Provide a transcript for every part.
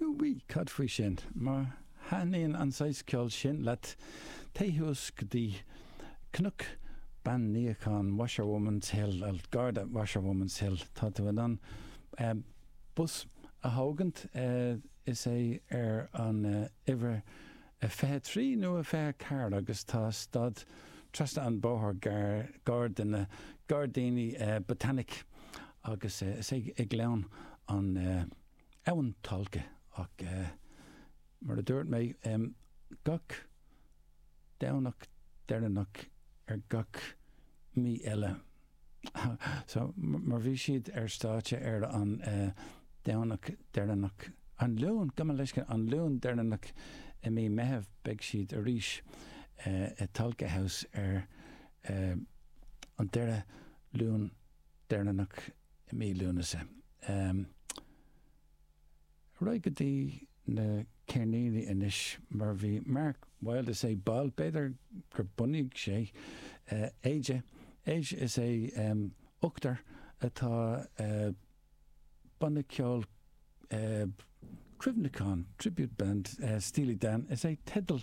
Bhuel, cad faoi sin? Má thaitníonn an saghas ceoil sin leat, téigh suas go dtí Cnoc Bean Níocháin, Washerwoman's Hill, gar do Washerwoman's Hill, tá tú in ann bus a thógaint, is é ar an uimhir a 23 nó a 24 agus tá stad trasna an bhóthair gar do na Gairdíní Botanic agus is ag gleann an Abhainn Tulcha ach mar a dúirt mé gach Domhnach deireanach ar gach mí eile. So, mar bhí siad ar stáitse ar an Domhnach deireanach, an Luan, gabh mo leithscéal, an Luan deireanach i mí Meitheamh, beidh siad arís i Tolka House ar an deireadh Luan deireanach i mí Lúnasa. Ar aghaidh go dtí. na ceirníní anois mar bhí Mark Wilde is é ball, b'fhéidir gur bunaigh sé Aja, Aja is é ochtar atá banna ceoil cuimhneacháin, tribute band Steely Dan is é teideal.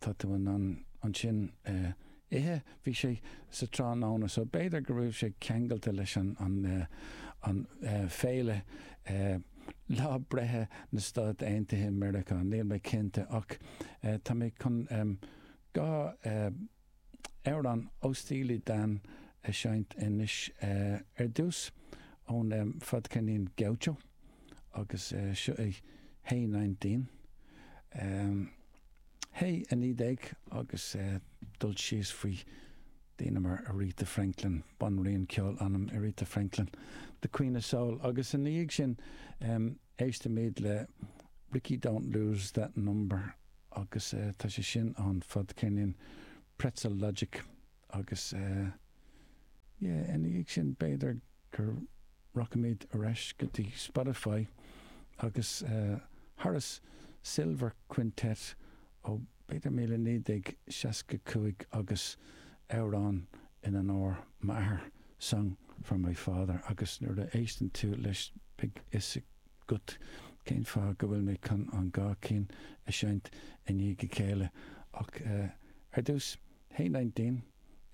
tá tú in ann ansin ithe. Bhí sé sa tráthnóna so b'fhéidir go raibh sé ceangailte leis an féile lá breithe na Stát Aontaithe Meiriceá, níl mé cinnte ach tá mé chun dhá amhrán ó Steely Dan a seinnt anois ar dtús, ón fadceirnín Gaucho, agus seo é Hey Nineteen. Hey, a naoi déag, agus cur síos faoi daoine mar Aretha Franklin, banríon ceoil anam, Aretha Franklin, The Queen of Soul, agus ina dhiaidh sin, Éistimid le Rikki Don't Lose That Number agus tá sé sin ón fadceirnín Pretzel Logic agus yeah ina dhiaidh sin b'fhéidir gur rachaimid ar ais go dtí Spotify agus Horace Silver Quintet ó b'fhéidir 1965 agus amhrán in onóir m'athar song for my father agus nuair a éisteann tú leis beidh a fhios agat cén fáth go bhfuil mé chun an dhá cinn a seinnt i ndiaidh a chéile ach ar dtús Hey Nineteen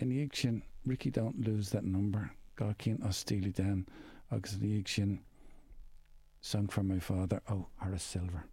ina dhiaidh sin Rikki Don't Lose That Number dhá cinn ó Steely Dan agus ina dhiaidh sin song for my father ó Horace Silver.